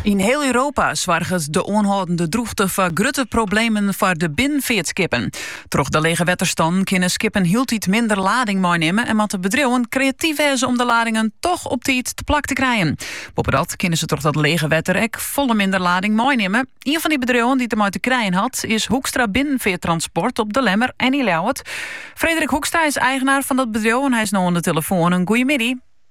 Yn hiel Europa soarget de oanhâldende drûchte foar grutte problemen foar de binnenfeartskippen. Troch de lege wetterstannen kinne skippen hieltyd minder lading meinimme en moatte bedriuwen kreatyf wêze om de ladingen toch op tiid teplak te krijen. Boppedat kinne se troch dat lege wetter ek folle minder lading meinimme. Ien fan dy bedriuwen dy't dermei te krijen hat, is Hoekstra Binnenfearttransport op De Lemmer en yn Ljouwert. Frederik Hoekstra is eigenaar fan dat bedriuw en hy is no oan de telefoan. In goeiemiddei.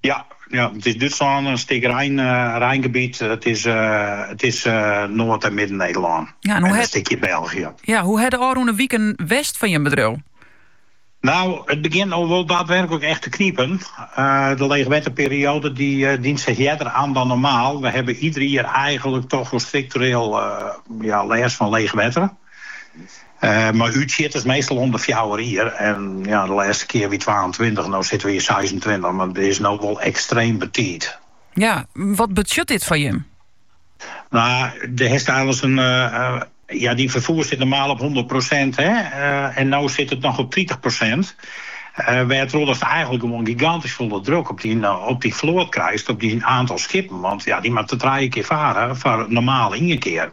Ja, ja, it is Dútslân, in stik Rijn, eh, Rijngebiet. It is, eh, it is eh, Noard en Midden-Nederlân. Ja, en hoe en in stikje België. Ja, hoe ha de ôfrûne wiken west fan jim bedriuw? No, it begjint no wol daadwerkelik echt te knipen. Eh, de leechwetterperioade dy eh, dient sich earder oan dan normaal. We hawwe ieder jier eigenlik toch wol struktureel eh, ja, lêst fan leechwetter. Mei útsjitters meastal om de fjouwer jier en ja, de lêste kear wie twaentweintich, no sitte we yn seisentweintich, mar it is no wol ekstreem betiid. Ja, wat betsjut dit foar jim? No, do hast einliks en ja, dyn ferfoer sit normaal op hûndert prosint hè, en no sit it noch op tritich prosint, wêrtroch datst eigenlik gewoan gigantysk folle druk op dyn op dyn float krijst, op dyn aantal skippen, want ja, dy moatte trije kear fare foar normaal ien kear.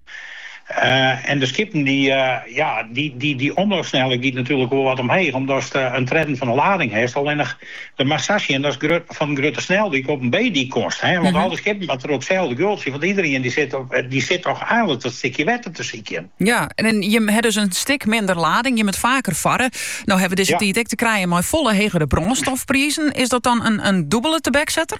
En de skippen dy, ja, de omloopsnelheid giet natuerlik wol wat omheech omdatst in tredden fan de lading hast. Allinnich do moatst sa sjen datst fan in grutte sneldyk op in B-dyk komst. Want al dy skippen moatte troch itselde geultsje, want iedereen dy sit toch eigenlik dat stikje wetter te sykjen. Ja, en jimme ha dus in stik minder lading, jimme moatte faker farre. No ha we dizze tiid ek te krijen mei folle hegere brânstofprizen. Is dat dan in dûbele tebeksetter?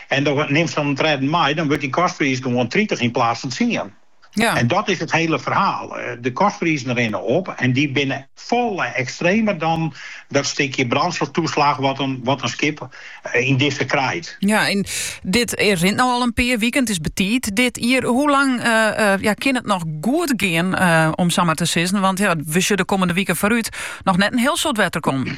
En do nimst dan in tredden mei, dan wurdt dy kostpriis gewoan tritich yn plaats fan tsien. Ja. En dat is it hele ferhaal. Eh, de kostprizen rinne op en dy binne folle ekstremer dan dat stikje brânstoftoeslach wat in, wat in skip eh, yn dizze krijt. Ja, en dit rint no al in pear wiken. Het is betiid dit jier. Hoe lang eh, eh, ja, kin it noch goed gean, eh, om sa mar te sizzen? Want ja, wy sjogge de kommende wiken foarút noch net in hiel soad wetter kommen.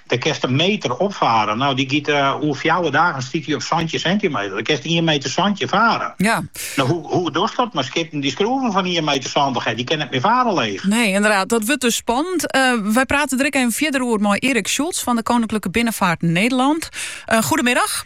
Dêr kinst in meter op fare. No, dy giet oer fjouwer dagen stiet dy op santjin sintimeter. Dêr kinst ien meter santjin fare. Ja. No, hoe, hoe dochst dat mei skippen dy't skroeven fan ien meter santich hawwe? Dy kinne net mear fare leech. Nee, inderdaad. Dat wurdt dus spannend. Uh, wy prate der even fierder oer mei Erik Schultz fan de Koninklijke Binnenvaart Nederland. Uh, goedemiddag.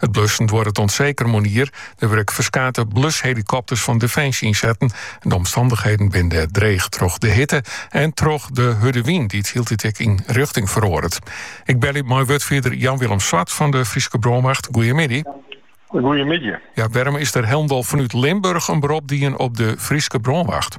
It blussen duorret oant seker moarnier. Der wurde ek ferskate blushelikopters fan Defensje ynsetten. De omstannichheden binne dêr dreech troch de hitte en troch de hurde wyn dy't hieltyd ek yn rjochting feroaret. Ik belje mei wurdfierder Jan Willem Zwart fan de Fryske Brânwacht. Goeiemiddei. Goeiemiddei. Ja, wêrom is der hielendal fanút Limburch in berop dien op de Fryske Brânwacht?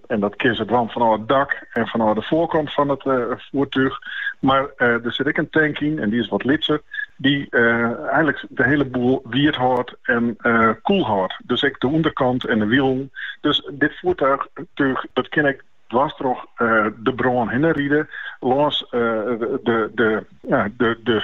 En dat kin se dwaan fanôf it dak en fanôf de foarkant fan it uh, foertúch. Mar uh, der sit ek in tank yn, en dy is wat lytser, dy't uh, eigenlik de hiele boel wiet hâldt en uh, koel hâldt. Dus ek de ûnderkant en de wielen. Dus dit foertúch, dat kin ek dwars troch uh, de brân hinne ride, lâns uh, de, de, ja, de, de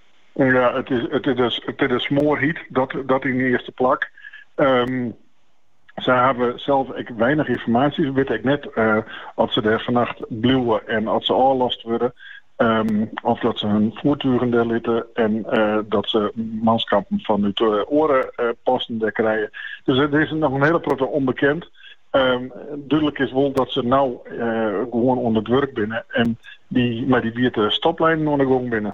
Ja, it is, it is, it is dêr smoarhjit, dat, dat yn de earste plak. Ehm, Sy hawwe sels ek weinich ynformaasje. Sy witte ek net uh, eh, oft se dêr fannacht bliuwe en oft se ôflast wurde. Um, of dat se hun foertugen dêr litte en uh, dat se manskippen fanút uh, eh, oare uh, posten dêr krije. Dus der is noch in hiele protte ûnbekend. Um, dúdlik is wol dat se no uh, gewoan oan it wurk binne en dy, mei dy wiete stoplinen oan 'e gong binne.